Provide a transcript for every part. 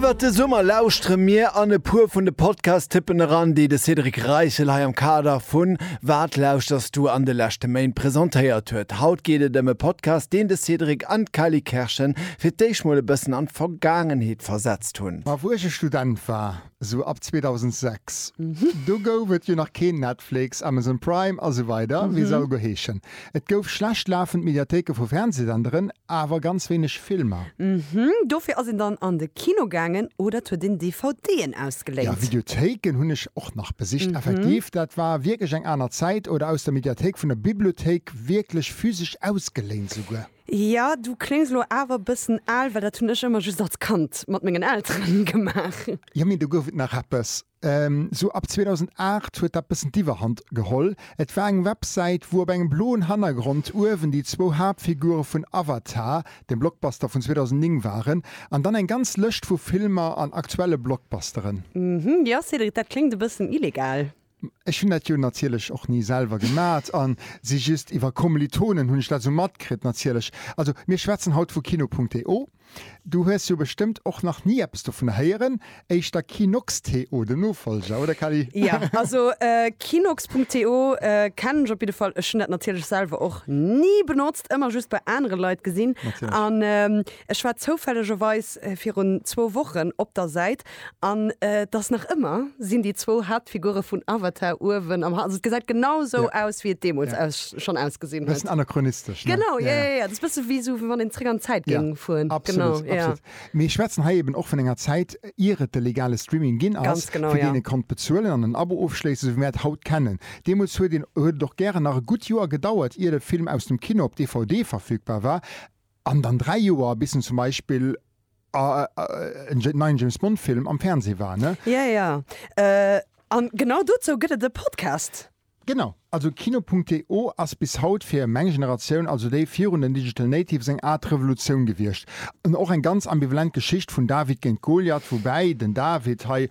Iwwert de Summer lauschtere mir an e puer vun de Podcast-Tippen eran, déi de Cédric Reichel hei am Kader vu Wat lauschterst du an de leschte Méint presentéiert huet. Haut geet et ëm e Podcast, deen de Cédric an d'Kelly Kerschen fir d'éischt mol e bëssen an d'Vergaangenheet versetzt hunn. A wou ech e Student war. Sou ab 2006. Do gouf et jo nach keen Netflix, Amazon Prime a sou weider, wéi se all go heeschen. Et gouf schlecht lafend Mediathéike vu Fernsehsenderen, awer ganz wéineg Filmer. Dofir ass een dann an de Kino gaangen oder et huet een DVDen Ja, ausgeléint. Videothéiken hunn ech och nach besicht, effektiv. Dat war wierklech eng aner Zäit. Oder aus der Mediathéik vun der Bibliothéik, wierklech physesch ausgeléint souguer. Ja, du kléngs elo awer bëssen al, well dat hunn ech ëmmer just als Kand mat mengen Elteren gemaach. Jo, mee do gouf et nach eppes. Sou ab 2008 huet dat bëssen d'Iwwerhand geholl. Et war eng Websäit, wou op engem bloen Hannergrond uewen déi zwou Haaptfigure vun Avatar, dem Blockbuster vun 2009, waren, an dann eng ganz Lëscht vu Filmer an aktuelle Blockbusteren. Mhmm, jo, Cédric, dat kléngt e bëssen illegal. Ech hunn dat jo natierlech och ni selwer gemat a si just iwwer Kommilitonen hunn ech dat esou matkritt natierlech. Also mir schwätzen haut vu Kino.to. Du hues jo bestëmmt och nach ni eppes dovun héieren, éischter Kinox.to, den Nofollger, oder Cally? Jo, also Kinox.to kennen ech op jidde Fall. Ech hunn dat natierlech selwer och ni benotzt, ëmmer just bei anere Leit gesinn. Natierlech. Ech war zoufällegerweis virun zwou Wochen op der Säit an et ass nach ëmmer, sinn déi zwou Haaptfigure vun Avatar uewen am, also et gesäit genau esou aus wéi et deemools aus schonn ausgesinn huet. Bëssen anachronistesch, ne? Genau, jo jo jo, dat ass e bësse wéi esou wéi wann een zeréck an d'Zäit géing fueren. Genau, Absolut, jo. absolut. Mir schwätzen hei eben och vun enger Zäit ier et de legale Streaming ginn ass, Ganz genau, fir deen jo. ee konnt bezuelen an en Abo ofschléissen, esou wéi mir dat haut kennen. Deemools huet een, huet et och gären nach e gutt Joer gedauert ier de Film aus dem Kino op DVD verfügbar war. An dann dräi Joer bis en zum Beispill en neien James Bond Film am Fernseh war ne? Ja ja an genau dozou gëtt et e Podcast. Genau, also Kino.to ass bis haut fir meng Generatioun, also déi virun den Digital Natives, eng Aart Revolutioun gewiescht. Och eng ganz ambivalent Geschicht vun David géint Goliath, woubäi den David hei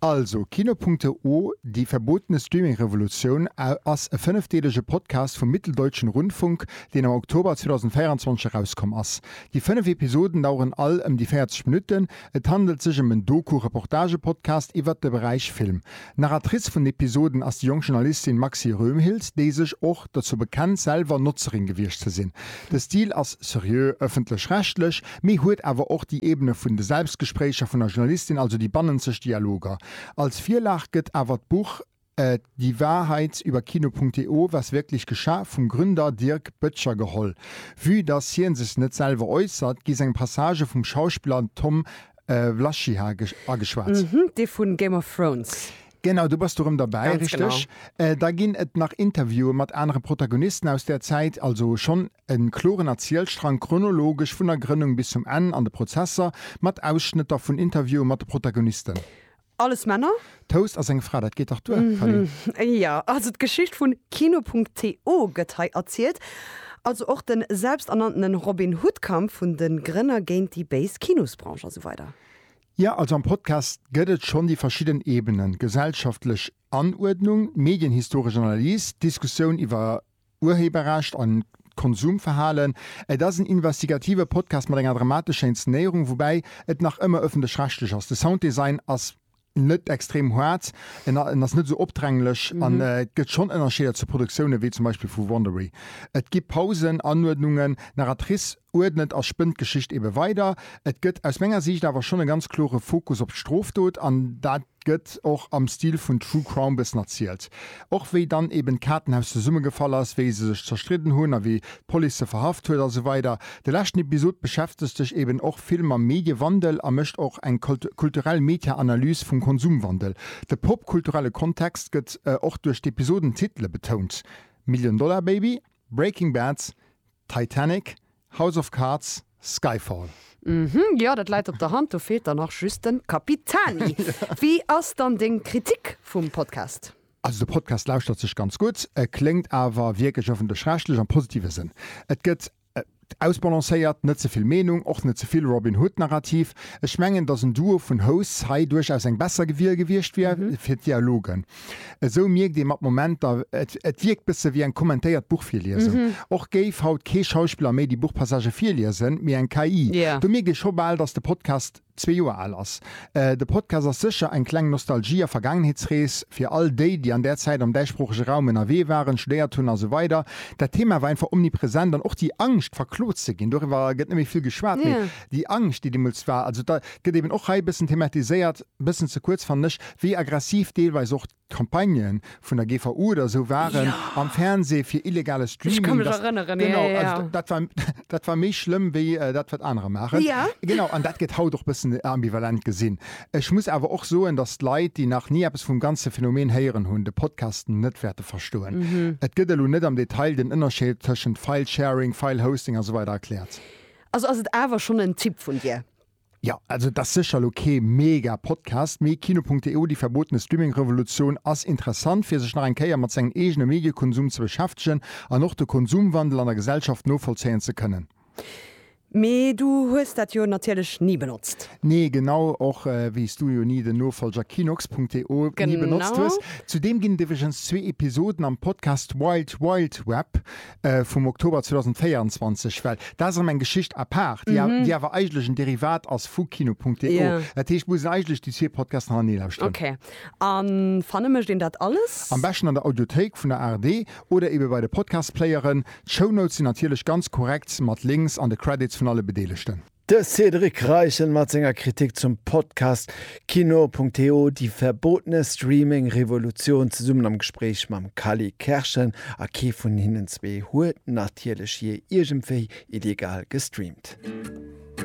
Also, Kino.de, Die verbotene Streaming-Revolution ass e fënnefdeelege Podcast vum Mitteldeutschen Rundfunk, deen am Oktober 2024 erauskomm ass. Déi fënnef Episoden daueren all ëm déi 40 Minutten. Et handelt sech ëm en Doku-Reportage-Podcast iwwert de Beräich Film. Narratrice vun den Episoden ass déi jonk Journalistin Maxi Röhmhild, déi sech och dozou bekennt, selwer Notzerin gewiescht ze sinn. De Stil ass seriö, ëffentlech-rechtlech, mee huet awer och déi Ebene vun de Selbstgespréicher vun der Journalistin, also déi bannenzeg Dialoger. Als Virlag gëtt awer d'Buch Die Wahrheit über Kino.de, Was wirklich geschah? vum Gründer Dirk Böttcher geholl. Vue dass hie sech net selwer äussert, gi seng Passagë vum Schauspiller Tom Wlaschiha ageschwat. Dee vun Game of Thrones. Genau, do bass du erëm derbäi, Ganz genau. richteg. Da ginn et nach Interviewen mat anere Protagonisten aus där Zäit, also schonn e kloren Erzielstrang, chronologesch vun der Grënnung bis zum Enn an de Prozesser, mat Ausschnëtter vun Interviewen mat de Protagonisten. Alles Männer? Toast ass eng Fra, dat geet dach duer, Fally. Jo, also d'Geschicht vun Kino.to gëtt hei erzielt, also och de selbsternanntene Robin-Hood-Kampf vun de Grënner géint déi béis Kinosbranche a sou weider. Jo, also am Podcast gëtt et schonn déi verschidden Ebenen, gesellschaftlech Anuerdnung, medienhistoresch Analys, d'Diskussioun iwwer Urheberrecht an d'Konsumverhalen. Et ass en investigative Podcast mat enger dramatescher Inszenéierung, woubäi et nach ëmmer ëffentlech-rechtlech ass. De Sounddesign ass net extrem haart, en ass net esou opdränglech an et gëtt schonn Ënnerscheeder zu Produktioune wéi zum Beispill vu Wondery. Et gi Pausen, Anuerdnungen, Narratrice uerdnet a spënnt d'Geschicht ebe weider. Et gëtt aus menger Siicht awer schonn e ganz klore Fokus op d'Strofdot an dat gëtt och am Stil vun True Crime bëssen erzielt. Och wéi dann eben d'Kaartenhaus zesummegefall ass, wéi se sech zerstridden hunn a wéi d'Police se verhaft huet a sou weider. De leschten Episod beschäftegt sech eben och vill mam Mediewandel a mécht och eng kulturell Meta-Analys vum Konsumwandel. De popkulturelle Kontext gëtt och duerch d'Episodentitele betount, Million Dollar Baby, Breaking Bad, Titanic, House of Cards, Skyfall. Uhmm, jo dat läit op der Hand, do feelt dann nach just den Capitani. Wéi ass dann deng Kritik vum Podcast? Also de Podcast lauschtert sech ganz gutt, e kléngt awer wierklech ëffentlech-rechtlech, am positive Sënn. Et gëtt ausbalancéiert, net ze vill Meenung, och net ze vill Robin Hood-Narrativ. Ech mengen, datt en Duo vun Hosts hei duerchaus eng besser Wiel gewiescht wier fir d'Dialogen. Esou mierkt ee mat Momenter, et wierkt bësse wéi eng kommentéiert Buchvirliesung. Och géif haut kee Schauspiller méi déi Buchpassagë virliesen, mee eng KI. Do mierkt ee scho bal, datt de Podcast zwee Joer al ass. De Podcast ass sécher eng kleng Nostalgie a Vergaangenheetsrees fir all déi, déi an där Zäit am däitsproochege Raum ënnerwee waren, studéiert hunn a sou weider. Dat Thema war einfach omnipresent an och déi Angscht, verklot ze ginn, doriwwer gëtt net méi vill geschwat, mee déi Angscht, déi deemools war, also et gëtt eeben och hei e bëssen thematiséiert. e bëssen ze kuerz fannen ech, wéi aggressiv deelweis och d'Campagnë vun der GVU oder esou waren am Fernseh fir illegale Streaming. Dat, genau, also dat war, dat war méi schlëmm wéi dat, wat anerer maachen. Genau, an dat gëtt haut och e bëssen ambivalent gesinn. Ech muss awer och soen, datt d'Leit, déi nach ni eppes vum ganze Phänomen héieren hunn, de Podcast net wäerte verstoen. Et gëtt elo net am Detail den Ënnerscheed tëschent File-Sharing, File-Hosting a sou weider erkläert. Also ass et awer schonn en Tipp vun dir. Jo, also et ass sécher elo kee mega Podcast, mee Kino.delu, déi verbotene Streaming-Revolutioun, ass interessant fir sech nach eng Kéier mat sengen eegene Mediekonsum ze beschäftegen an och de Konsumwandel an der Gesellschaft novollzéien ze kënnen. Mee du hues dat jo natierlech ni benotzt? Nee, genau, och wéi s du jo ni den Nofollger Kinox.delu ni benotzt hues. Genau. Zudeem ginn et iwwregens zwee Episoden am Podcast Wild Wild Web, vum Oktober 2024, well dat ass erëm eng Geschicht à part, déi awer, déi awer eigentlech en Derivat ass vu Kino.delo. Jo. Dat heescht, muss een eigentlech déi zwee Podcasts hanernee lauschteren. Ok. A fanne mécht een dat alles? Am beschten an der Audiothéik vun der ARD oder ebe bei de Podcast-Playeren. D'Shownotes sinn natierlech ganz korrekt mat Links an de Credits vun alle Bedeelegten. De Cédric Reichen mat senger Kritik zum Podcast Kino.to, déi verbotene Streaming-Revolutioun, zesummen am Gespréich mam Kally Kerschen. A kee vun hinnen zwee huet natierlech jee iergendwéi illegal gestreamt.